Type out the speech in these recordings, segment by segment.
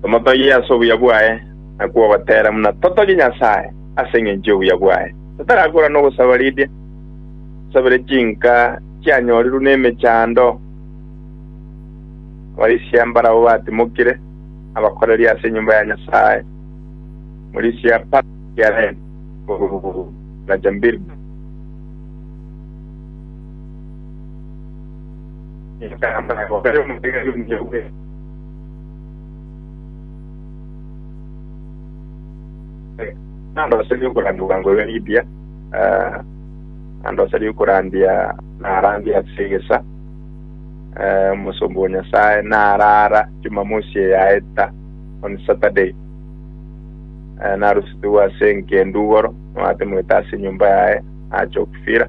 Tomotogie ase obuya bwaye, nakwo ogotera buna totogie Nyasae ase engencho y'obuya bwaye. Totarakora nogosaba ridia, tosabere chinka chianyorirwe nemechando, abarisia mbarabwo batimokire, na abakoreri ase enyomba ya Nyasae. Omorisia apare ekiarenti, oboruoti, na chambiriba. Nkaamba, Obeyo omotegeri omuya bwe. Nandoserie okorandia bwango bwe Lidia, nandoserie okorandia narandia ase egesa. Omosomba o Nyasae naraara Jumamosi eye yaeta, on Saturday. Narusetigwe ase engendu igoro, noatemoete ase enyomba yaye, nacha okufira.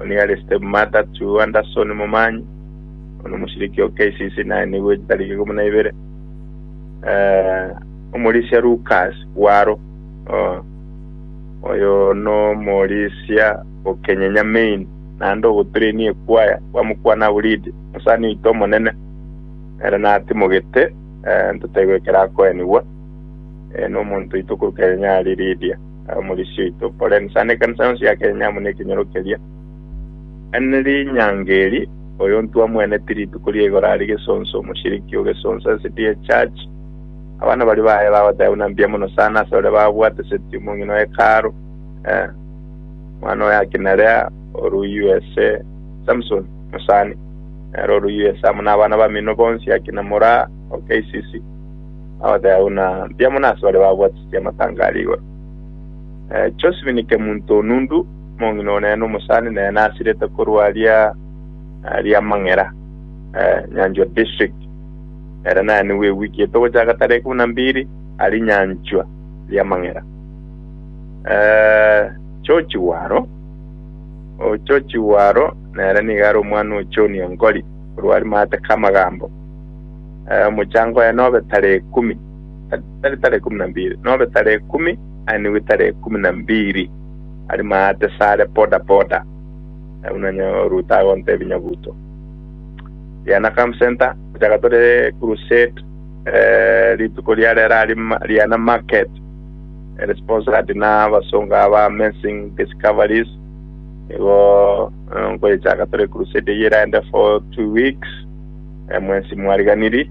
Oria are stepmata to Anderson Momanyi, one omoshiriki o KCC naye nigo etariki ikomi na ibere. Eh, omorisia Lucas Waro, oh, oyo nomorisia o Kenyenya Main, naende ogotrainia ekwaya bamokwana Aburidi, mosani oito omonene, ere natimogete, eh, ntotaigwe ekero akoenigwa, eh, nomonto oito korwa Kenyenya aria Lydia. Omorisia oito Poleni, sande ekanisa yonsi ya Kenya amo nekenyoro keria. Ane rinyango eri, oyo ntwamweneti rituko ria igoro aria Gesonso, omoshiriki o Gesonso SDA Church. Abana baria baye bagoteba buna mbuya mono sana ase baria babwate seti omong'ina o Hekalu, eh, omwana oye akina Lea, oru USA, Samson, omosani, nere oru USA, amo nabana bamino bonsi akina Moraa, o KCC. Bagoteba buna mbuya mono ase baria babwate y'amatanga aria igoro. Josephine Kemunto Onundu, omong'ina one na omosani nere nasirete korwa aria Riamang'era, Nyanchwa District. Ere naye nigo egwikiete ogochaka tarehe ikomi na mbiri aria Nyanchwa, Riamang'era. George Waro, George Waro nere nigo are omwana o John Ongori korwa aria Maate Kamagambo. Omochango oye nobe tarehe ikomi. tari tara ekumu na mbiri, nobe tara ekumi, aye nigo tara ekumu na mbiri, ari maate sare poda poda. Nabo nonya Ruto agontebia Nyabuto, Riana Camp Centre, gochaka tore crusade, eh, rituko ria rero ari ma- Riana Market, ere sponsored na abasongo aba Amazing Discoveries, igo eh, nkoyechaka tore crusade eye eraende for two weeks, eh, mwensi mwariganiri,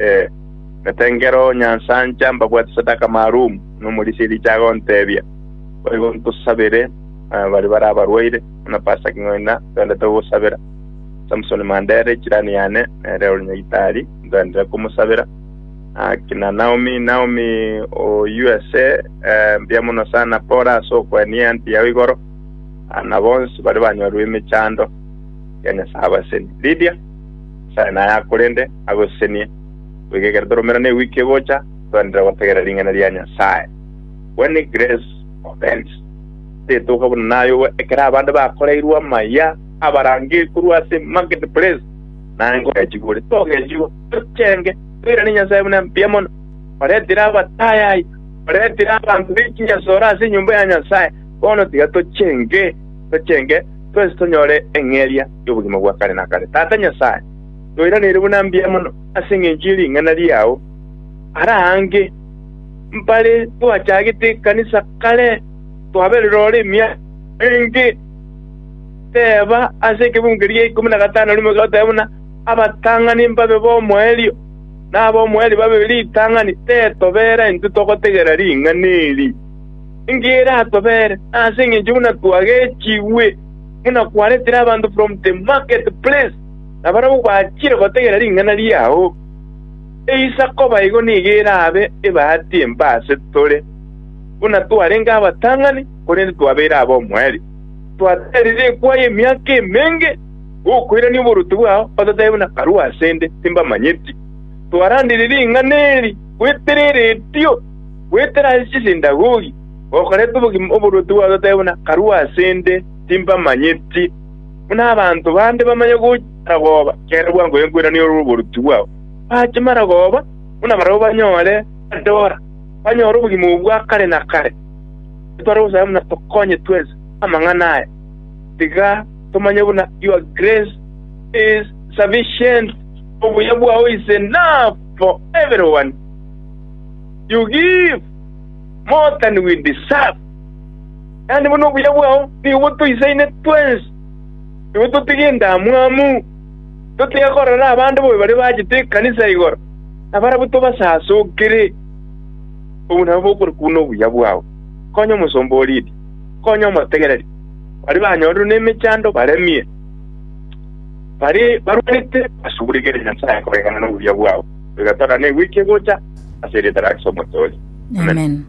ee, na tengera onyansancha mbabwate sadaka maalumu, na omorisia ericha agontebia, Boigo ntosabere baria bare abarwaire, buna Pasaki ng'ina twendete gogosabera. Samsoni Mandere, chirani yane, nere ore nyagitari, ntwendete komosabera. Aki na Naomi, Naomi o USA, ee, mbuya mono sana, pore ase okoenia eanti yao igoro, na bonsi baria banyorwe emechando ya Nyasae abaseni. Lydia. Sare naye akorende, agosesenie, goika ekero toromera newiki egocha, toenderere gotegerera ring'ana ria Nyasae. When Grace Opened, Rituko buna nayogo ekero abande bakoreirwe amaya abarange korwa ase market place, naye nkogechigwa ore. Togechigwa, tochenge, toirane Nyasae buna mbuya mono. Oretire abatayaya, oretire abanto be chinyasore ase enyomba ya Nyasae, bono tiga tochenge, tochenge, twensi tonyore eng'eria. y'obogima bwa kare na kare. Tata Nyasae, noiraneire buna mbuya mono ase engencho ye ring'ana riao are aange. Mbare twachagete ekanisa kare twaberire ore emiaka enge, teeba ase ekebungo eria gia ikomi na gatano rimo iga otebe buna, Abatang'ani mbabe b'omoerio, na ab'omoerio babe ritang'ani, tetobeera intwe togotegera ring'ana eri, engiya eratobere, na ase engencho buna twagechigwe. buna kwaretire abanto from the market place, na barabwo bachire gotegera ring'ana riao. Eisa koba igo nigo erabe ebahati embe ase tore, buna twarenge abatang'ani, korende twabeire ab'omoerio. Twaterire ekwayi emiaka emenge, gokoirania oboruoti bwao, ototabe buna barua ase 'nde timbamanyeti. Twarandire ring'ana eri goetera eretio, goetera ase chisinagogi, Okorete obogima oborwoti gwatoteebia buna karue ase 'nde, timbamanyeti. Buna abanto bande bamanya gochia maragoba ekero bwangoire nkoiraneria ore oborwoti bwao, bachie maragoba buna barabwo banyore badora, banyore obogima obwo bwa kare na kare. Nintware gosaba buna tokonye twensi amang'ana aya. Tiga tomanye buna Your grace is sufficient, Obuya bwao is enough for everyone you give. More than we deserve. Yaani buna obuya bwao nigo botoisaine twensi, nigo totige endamwamu, totige korora abande bobe baria bachete ekanisa igoro, nabarabwo tobasasokere. Obwo nabwo bokore korwa nobuya bwao. Konya omosomba o Lidia, konya omotegereri, baria banyorire nemechando baremie, baria barwarete basuguregere Nyasae koegena nobuya bwao. Iga torane egwiki egocha, ase erieta ria Kristo Omochori. Amen.